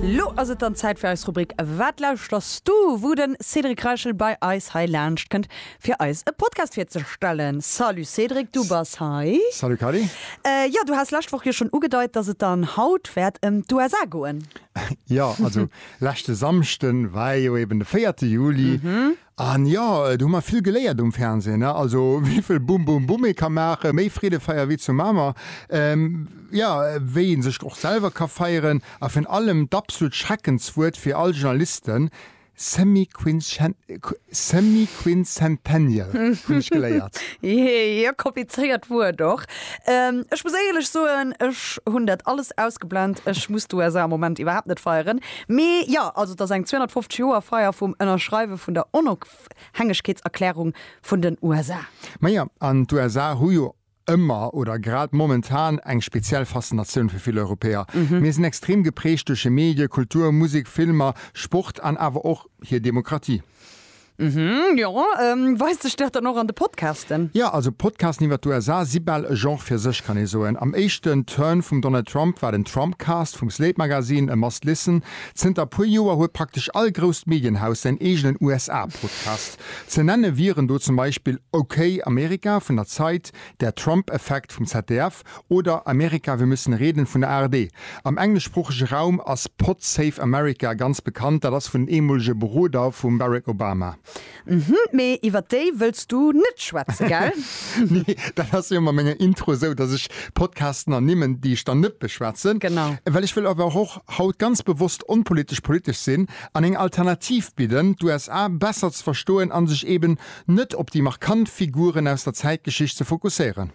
Lo ass et dann Zäit fir eis Rubrik Wat lauschter's du? wou den Cédric Reichel bei eis hei laanscht kënnt fir eis e Podcast virzestellen. Salut Cédric, du bass hei. Salut Kady. Jo, du haas lescht Woch jo schon ugedeit dass et dann haut wäert em d'USA goen. Jo, also leschte Samschden war jo eben de 4 Juli An jo, do hu mer vill geléiert um Fernsehen, ne? Also wéivill Bum, Bum, Bum ee ka maachen, méi Freedefeier wéi zu Mamer, jo, wéi ee sech och selwer ka feieren, a virun allem d'absolut Schreckenswuert fir all Journalisten, semi-quincentennial hunn ech geléiert. Jee, e komplizéiert Wuert och. Ech muss éierlech soen, ech hunn dat alles ausgeblend. Ech muss d'USA am Moment iwwerhaapt net feieren. Mee jo, also et ass eng 250 Joer Feier vum Ënnerschreiwe vun der Onofhängegkeetserklärung vun den USA. Majo, an d'USA hu jo ëmmer, oder grad momentan, eng speziell Faszinatioun fir vill Europäer. Mir sinn extrem geprägt duerch hir Medie, Kultur, Musek, Filmer, Sport an awer och hir Demokratie. Uhmm, jo. Weist sech dat dann och an de Podcasten? Jo, also Podcasten iwwer d'USA si bal e Genre fir sech, kann ee soen. Am éischten Turn vum Donald Trump war den Trumpcast vum Slate Magazine e must listen. Zënter e puer Joer huet praktesch all grousst Medienhaus säin eegenen USA-Podcast. Ze nenne wieren do zum Beispill Okay America vun der Zeit, Der Trump Effekt vum ZDF Oder Amerika, wir müssen reden vun der ARD. Am engleschsproochege Raum ass Pod Save America ganz bekannt, dat ass vun den eemolege Beroder vum Barack Obama. Mhm, mee iwwer déi wëlls du net schwätzen, gell? Nee, dat ass jo mat menger Intro esou, dass ech Podcasten ernimmen, déi ech dann net beschwätzen. Genau. Well ech wëll awer och haut ganz bewosst onpolitesch politesch sinn an eng Alternativ bidden, d'USA besser ze verstoen a sech eeben net op déi markant Figuren aus der Zäitgeschicht ze fokusséieren.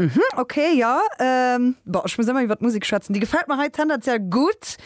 Mhm, ok, jo. Ehm, boah, ech muss ëmmer iwwert Musik schwätzen. Déi gefällt mer hei tendenziell gutt.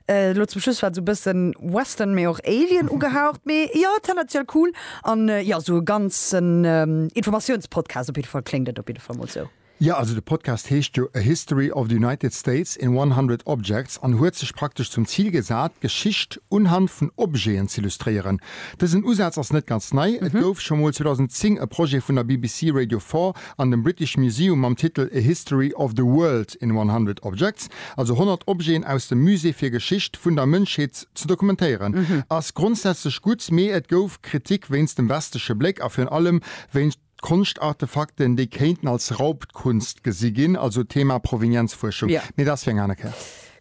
Eh, elo zum Schluss war et sou bëssen Western, mee och Alien ugehaucht. Mee jo, tendenziell cool. An jo, sou e ganzen Informatiounspodcast op jidde Fall kléngt et op jidde Fall mol sou. Jo, also de Podcast heescht jo A History of the United States in 100 Objects an huet sech praktesch zum Zil gesat, d'Geschicht unhand vun Objeten z'illustréieren. Dësen Usaz ass net ganz nei. Et gouf scho mol 2010 e Projet vun der BBC Radio Four an dem British Museum mam Titel A History of the World in 100 Objects, also 100 Objeten aus dem Musée fir Geschicht vun der Mënschheet ze dokumentéieren. Ass grondsätzlech gutt, mee et gouf Kritik wéinst dem westleche Bléck a virun allem wéinst. D'Konschtartefakten, déi kéinten als Raubtkunst gesi ginn, also Thema Provenienzfuerschung. Jo. Mee dat ass fir eng aner Kéier.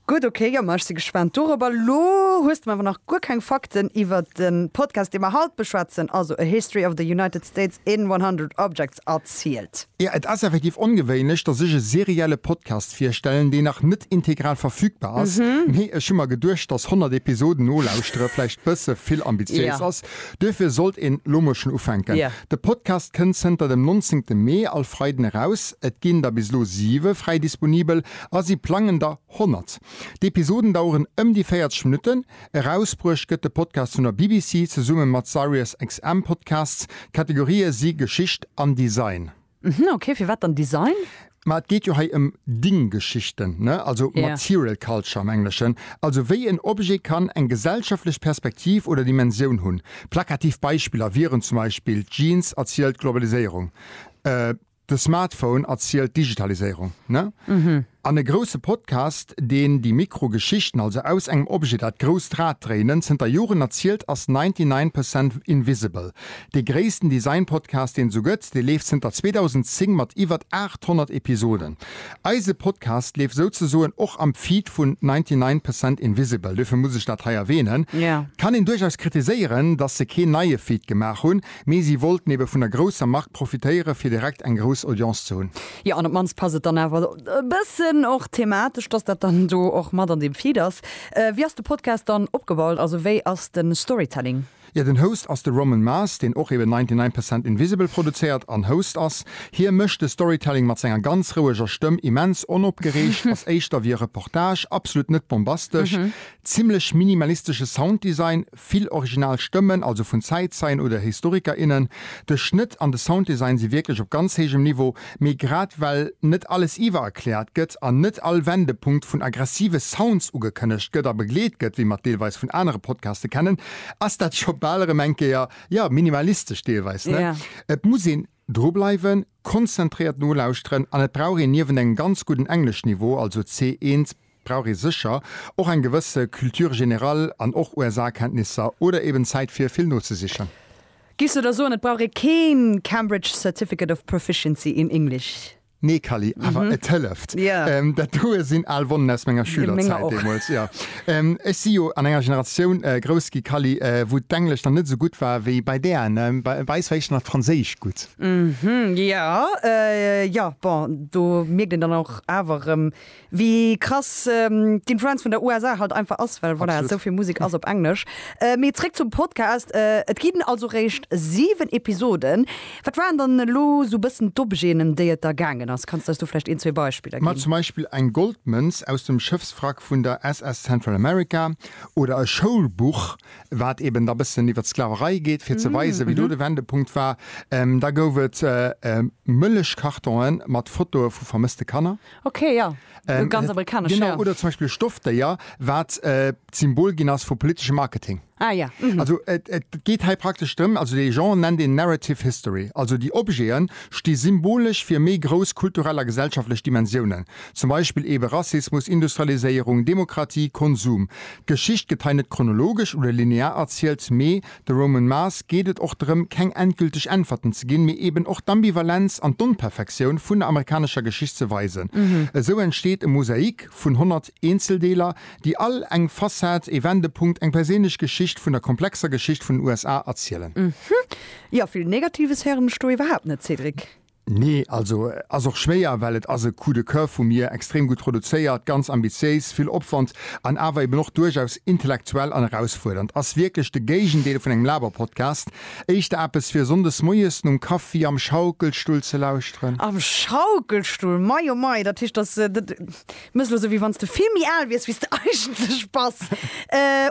Gutt, okay, jo, ma ech si gespaant dorobber. Elo hues de mer awer nach guer keng Fakten iwwer de Podcast, dee mer haut beschwätzen, also A History of the United States in 100 Objects erzielt. Jo, et ass effektiv ongewéinlech, dass ech e serielle Podcast virstellen, deen nach net integral verfügbar ass. Mee ech hu mer geduecht, dass 100 Episoden nolauschtere vläicht bësse vill ambitiéis ass. Duerfir sollt een lo mol schon ufänken. De Podcast kënnt zënter dem 19 Mee all Freiden eraus. Et ginn der bis lo 7 fräi disponibel a si plangen der 100. D'Episoden daueren ëm déi 40 Minutten. Erausbruecht gëtt de Podcast vun der BBC zesumme mat Sirius XM Podcasts. D'Kategorië si Geschicht an Design. Mhm, ok, firwat dann Design? Ma et geet jo hei ëm Dinggeschichten, ne? Also Yeah. Material Culture am Engleschen. Also wéi en Objet kann eng gesellschaftlech Perspektiv oder Dimensioun hunn. Plakativ Beispiller wieren zum Beispill, d'Jeans erzielt d'Globaliséierung, de Smartphone erzielt d'Digitaliséierung, ne? An e grousse Podcast, deen déi Mikro-Geschichten, also aus engem Objet dat grousst Rad dréinen, zënter Joren erzielt, ass 99 Percent Invisible. Dee gréissten Design-Podcast, deen et esou gëtt. Dee leeft zënter 2010 mat iwwer 800 Episoden. Eise Podcast leeft souzesoen och am Feed vun 99 Percent Invisible, duerfir muss ech dat hei erwähnen. Et kann een duerchaus kritiséieren, dass se keen neie Feed gemaach hunn, Mee si wollten ebe vun der grousser Mark profitéiere fir direkt eng grouss Audience ze hunn. Jo, an op d'mannst passt et dann awer e bëssen och thematesch, dass dat dann do och mat an deem Feed ass. Wéi ass de Podcast dann opgebaut, also wéi ass de Storytelling? Jo, den Host ass de Roman Mars, deen och eben 99 Percent Invisible produzéiert an Host ass. Hie mécht de Storytelling mat senger ganz roueger Stëmm, immens onopgereegt, ass éischter wéi e Reportage, absolut net bombastesch, zimmlech minimalistesche Sounddesign, Vill original Stëmmen, also vun Zäitzeien oder Historiker, innen. De Schnëtt an de Sounddesign si wierklech op ganz héijem Niveau, mee grad well net alles iwwererkläert gëtt an net all Wendepunkt vun aggressive Sounds ugekënnegt gëtt a begleet gëtt, wéi mer et deelweis vun anere Podcaste kennen, ass dat scho bal erëm eng Kéier, jo, minimalistesch deelweis, ne? Et muss een. Dru bleiwen, konzentréiert nolauschteren an et brauch een niewent engem ganz gudden Engleschniveau, also C1, brauch ee sécher och eng gewësse Culture générale an och USA-Kenntnisser oder eben Zäit fir vill nozesichen. Giff se der soen, et brauch ee keen Cambridge Certificate of Proficiency in English? Nee Kally, awer et hëlleft. Dat doe sinn al Wonnen aus menger Schülerzäit deemools. Ech si jo an enger Generatioun grouss gi Kally, wou d'Englesch dann net esou gutt war wéi bei där. Bei eis war éischter nach d'Franséisch gutt. Jo, jo, bon, do mierkt een dann och awer erëm, Wéi krass d'Influenz vun der USA halt einfach ass, well voilà, esou vill Musek ass op Englesch. Mee zréck zum Podcast, et ginn also réischt 7 Episoden. Wat waren dann elo esou e bëssen d'Objeten, ëm déi et da gaangen ass? Kanns de eis do vläicht een, zwee Beispiller ginn? Ma zum Beispill eng Goldmënz aus dem Schëffswrack vun der SS Central America oder e Schoulbuch, wat eben da bëssen iwwert d'Sklaverei geet, fir ze weisen, wéi do de Wendepunkt war. Da gouf et Mëllechkartonen mat Fotoe vu vermësste Kanner. Okay, ja. Ähm, ganz amerikanesch. Genau, ja. oder zum Beispiel Stoffdéier, wat äh, d'Symbol ginn ass vu politeschem Marketing. Ah ja. Mhm. Also et, et geht hei praktesch drëm, also de Jean nennt den Narrative History. Also déi Objeten sti symbolesch fir méi grouss kulturell a gesellschaftlech Dimensiounen. Zum Beispill ebe Rassismus, Industrialiséierung, Demokratie, Konsum. D'Geschicht gëtt hei net chronologesch oder linear erzielt, mee De Roman Mars geet et och drëm, keng endgülteg Äntwerten ze ginn, mee eben och d'Ambivalenz an d'Onperfektioun vun der amerikanescher Geschicht ze weisen. Esou entsteet e Mosaik vun 100 Eenzeldeeler, déi all eng Fassad, ee Wendepunkt, eng perséinlech Geschicht vun der komplexer Geschicht vun den USA erzielen. Jo, vill Negatives héieren ech do iwwerhaapt net, Cédric. Nee, also ass och schwéier, well et ass e Coup de coeur vu mir, extrem gutt produzéiert, ganz ambitiéis, vill Opwand an awer eben och duerchaus intellektuell an erausfuerdernd. Ass wierklech de Géigendeel vun engem Laberpodcast, éischter eppes fir Sonndes moies nom Kaffi am Schaukelstull ze lauschteren. Am Schaukelstull, mei o mei, dat heescht, dass. Mess lo sou wéi wanns de vill méi aal wiers wéis de eigentlech bass.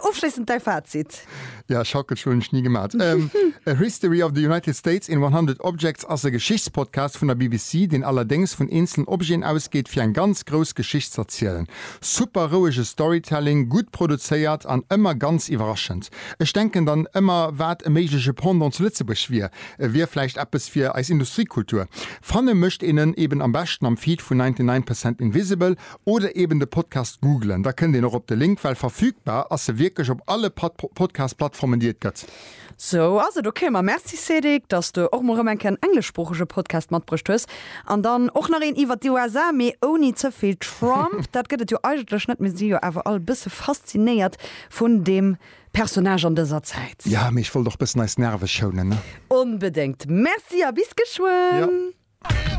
Ofschléissend däi Fazit. Ja, Schackel schloen hun ech ni gemat. A History of the United States in 100 Objects ass e Geschichtspodcast vun der BBC, deen allerdéngs vun eenzelen Objeten ausgeet, fir eng ganz grouss Geschicht z'erzielen. Super rouege Storytelling, gutt produzéiert an ëmmer ganz iwwerraschend. Ech denken dann ëmmer, wat e méigleche Pendant zu Lëtzebuerg wier. Wier vläicht eppes fir eis Industriekultur. Fanne mécht een en eben am beschten am Feed vun 99 Percent Invisible oder eben de Podcast googelen, da kënnt een och op de Link, well verfügbar ass se wierklech op alle Podcast-Plattformen déi et gëtt. Sou ass et ok. Ma merci Cédric, dass de och mol rëm eng Kéier en engleschsproochege Podcast matbruecht hues. An dann och nach een iwwert déi USA, mee ouni ze vill Trump, dat gëtt et jo eigentlech net. Mir si jo awer all e bësse faszinéiert vun deem Personnage an dëser Zäit. Ja, mee ech wollt och bëssen eis Nerve schounen, ne? Onbedéngt! Merci a bis geschwënn!